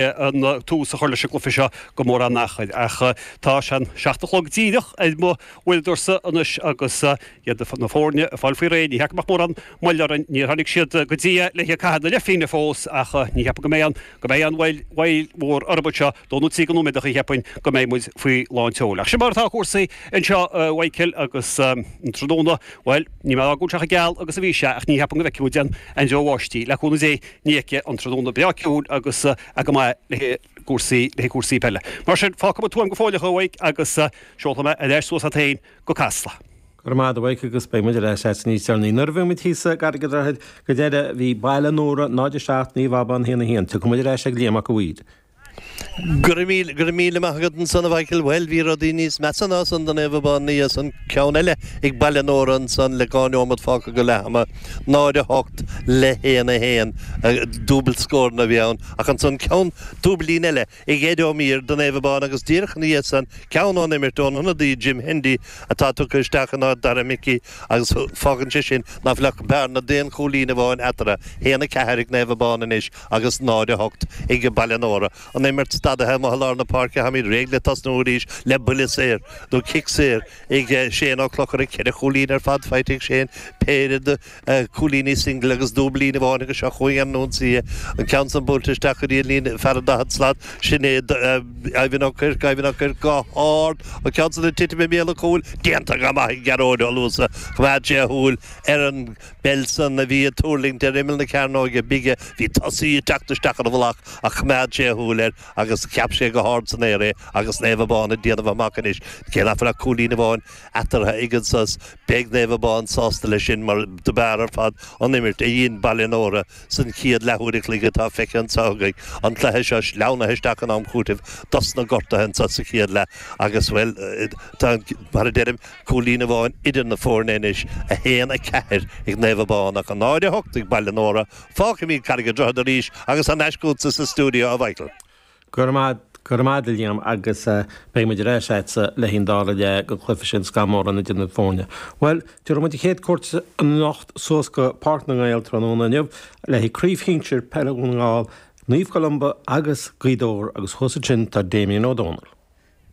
tús a chur leis an gcluiche seo gan mórán achair ach tá sé an seacht a chlog díreach ar m'uaireadóirsa anois agus iad na foirne ag fáil faoi réir. Ní thiocfaidh ach mórán moille orainn. Níor tháinig siad go dtí a leithéid ag caitheamh na leithphingne fós ach ní cheapaim go mbeidh go mbeidh an mhoill mhór orthu seo dó nó trí de nóiméadacha cheapfainn go mbeidh muid faoi lán tseoil. Ach sin mar atá cúrsaí anseo a Mhichael agus an tráthnóna bhuel níl sé chomh geal agus a bhí sé ach ní cheapaim go bhfeicfidh muid aon deoir bháistí le cúnamh Dé. Ní fheicfidh an tráthnóna breá ciúin agus é go maith le haghaidh cúrsaí peile. Mar sin, fágfaidh muid Tuaim go fóilleach a Mhaidhc agus seolfaidh mé ar ais suas leat féin go Casla. Go raibh maith a'd a Mhaidhc agus beidh muid ar ais leat níos deireanaí. Nuair a bhí muid thíos i gCarraig an Droichid go deireadh, bhí Baile Nóra 0, 7 Naomh Abán 1, 1. Tiocfaidh muid ar ais ag Liam Mac a' Mhaoir. Go raibh míle maith agat ansan, a Mhichael. Bhuel, bhí rudaí níos measa ná san do Naomh Abán ina dhiaidh san, ceann eile ag Baile Nóra ansan le dhá neomat fágtha go leath ama, 0, 8 le 1, 1, dúbailt scóranna a bhí ann, ach ansan ceann dúbailín eile ag Ed Ó Mír do Naomh Abán agus díreach ina dhiaidh san ceann ón imirt ón ionadaí Jim Hendy atá tugtha isteach in áit Dara Mickey agus fágann sé sin ná fuil ach bearna d'aon chúilín amháin eatarthu. 1, 4 ag Naomh Abán anois. agus 0 8 ag Baile Nóra, an imirt stadaithe amuigh i lár na páirce, táimid réidh le tosnú arís le buille saor nó cic saor ag Shane Ó Clochair, ceithre chúilín ar fad faighte ag Shane, péire de cúilíní single agus dúbailín amháin agus seo chugainn an ionsaí, an ceann san buailte isteach go dtí an líne fear an daichead slat, sin é Ivan Ó Cuirc, Ivan Ó Cuirc go hard, an ceann san ag titim i mbéal an chúil, déanta go maith ag Gearóid Ó Luasa, choimeád sé a shúil ar an. bpeil san, a bhí ag tuirlingt ar imeall na cearnóige bige. Bhí tosaí ag teacht isteach ar a mhullach ach choimeád sé a shúil air agus cheap sé go hard san aer é agus Naomh Abán ag déanamh amach anois. Cé nach bhfuil ach cúilín amháin eatartha ag an sos, beidh Naomh Abán sásta leis sin mar do b'fhearr ar fad an imirt a dhein Baile Nóra san chéad leathuair a chloig atá feicthe anseo againn. An cluiche seo sleamhnaithe isteach in am cúitimh dosna gortaithe anseo sa chéad leath agus, bhuel, tá an, mar a deirim, Cúilín amháin idir na foirne anois, 1, 4 ag Naomh Abán ach 0, 8 ag Baile Nóra. Fágfaimid Carraig an Droichid arís agus thar n-ais chugatsa sa stiúideo, a Mhichael. Go raibh maith a'd, go raibh maith a'd a Liam agus beidh muid ar ais a'dsa le haghaidh an dara leath le go gcloisfidh sibh an scamall mórán idir na foirne. Bhuel, tabharfaidh muid an chéad chuairt anocht suas go Páirc na nGael tráthnóna inniu le haghaidh craobh shinsir peile Dhún na nGall, Naomh Columba agus Gaoth Dobhair agus thuas ansin tá Damien Ó Dónaill.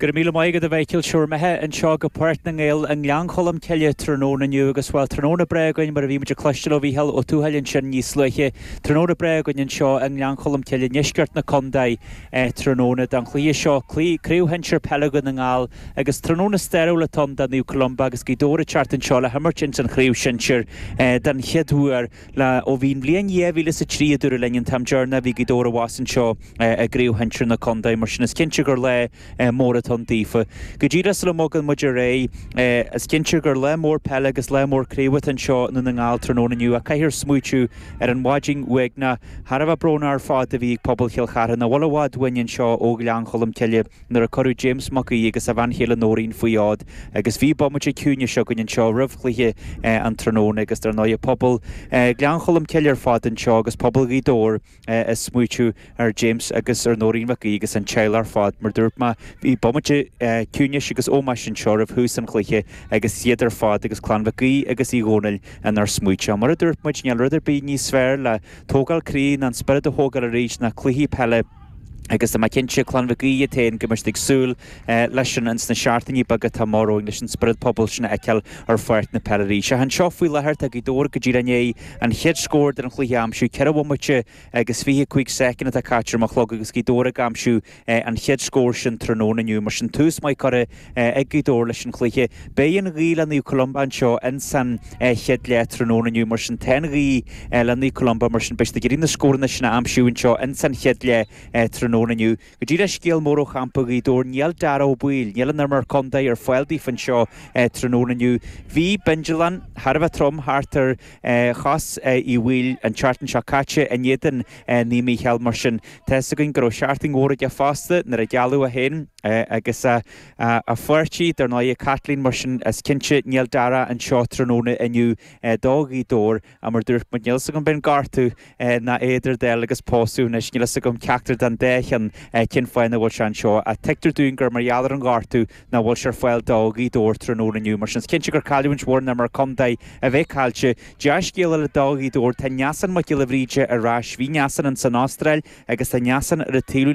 Go raibh míle maith agat a Mhichael. Sé bhur mbeatha anseo go Páirc na nGael i nGleann Cholm Cille tráthnóna inniu agus, bhuel, tráthnóna breá againn mar a bhí muid ag cloisteáil ó Mhícheál Ó Tuathail ansin níos luaithe, tráthnóna breá againn anseo i nGleann Cholm Cille i ndeisceart na condae tráthnóna don chluiche seo, Craobh Shinsear Peile Dhún na nGall agus tráthnóna stairiúil atá ann do Naomh Columba agus Gaoth Dobhair ag teacht anseo le himirt ins an Chraobh Shinsear don chéad uair. La ó bhí an bhliain dhá mhíle is a trí a dúradh linn an t-am deireanach a bhí Gaoth Dobhair abhus anseo i gcraobh shinsir na condae, mar sin is cinnte gur lá mór atá ann daofa. Go dtí le sula mbogann muid ar aghaidh is cinnte gur lá mór peile agus lá mór craobh atá anseo i nDún na nGall tráthnóna inniu ach caithfear smaoitiú ar an mhaidin uaigneach thar a bheith brónach ar fad a bhí ag pobal Chill Chartha nach bhfuil i bhfad uainn anseo ó Ghleann Cholm Cille. nuair a cuireadh James Mac Aoidh agus a bhean chéile Nóirín faoi fhód agus bhí bomaite ciúnais againn anseo roimh chluiche an tráthnóna agus dar ndóighe pobal Gleann Cholm Cille ar fad anseo agus pobal Ghaoth Dobhair ag smaoiteamh ar James agus ar Nóirín Mhic Aoidh agus an teaghlach ar fad mar dúirt mé bhí bomaite ciúnais agus ómóis anseo roimh thús an chluiche agus iad ar fad agus clann Mhic Aoidh agus Uí Dhónaill inár smaoiteamh. Mar a dúirt muid níl rud ar bith níos fearr le tógáil croí ná an spiorad a thógáil arís ná cluichí peile agus tá mé cinnte, Clann Mhic Aoidh iad féin, go mbeidh siad ag súil leis sin ins na seachtainí beaga atá amach romhainn, leis an spiorad pobail sin a fheiceáil ar pháirc na peile arís. Ach anseo faoi láthair, tá Gaoth Dobhair go díreach i ndiaidh an chéad scór den chluiche a aimsiú. Ceithre bhomaite agus fiche a cúig soicind atá caite ar mo chlog agus Gaoth Dobhair ag aimsiú an chéad scór sin tráthnóna inniu. Mar sin, tús maith curtha. Ag Gaoth Dobhair leis an chluiche. Beidh an ghaoth le Naomh Columba anseo in san chéad leath tráthnóna inniu. Mar sin tá an ghaoth le Naomh Columba. Mar sin beidh siad ag iarraidh na scóranna sin a aimsiú anseo in san chéad leath tráthnóna inniu. Go dtí le scéal mór ó champa Ghaoth Dobhair níl Dara Ó Baoill, níl an imreoir contae ar fáil daofa anseo tráthnóna inniu. Bhí bindealán thar a bheith trom thart ar. chos Uí Bhaoill an tseachtain seo caite in éadan Naomh Mícheál. Mar sin, tá fhios againn go raibh seachtain mhór aige fosta nuair a gealladh é féin agus a pháirtí. Dar ndóigh, Caitlín, mar sin, is cinnte níl Dara anseo tráthnóna inniu do Ghaoth Dobhair, mar dúirt muid, níl fhios agam, b'é an gortú, ná idir dáil agus pósadh anois, níl fhios agam ceachtar den dá cheann cén fáth nach bhfuil sé anseo. Tuigtear dúinn gur mar gheall ar an ghortú nach bhfuil sé ar fáil do Ghaoth Dobhair tráthnóna inniu. Mar sin is cinnte gur cailliúint mhór an imreoir contae a bheith caillte. Dea-scéal eile do Ghaoth Dobhair, tá Neasán Mac Giolla Bhríde ar ais. Bhí Neasán ins an Astráil agus tá Neasán ar an taobhlíne.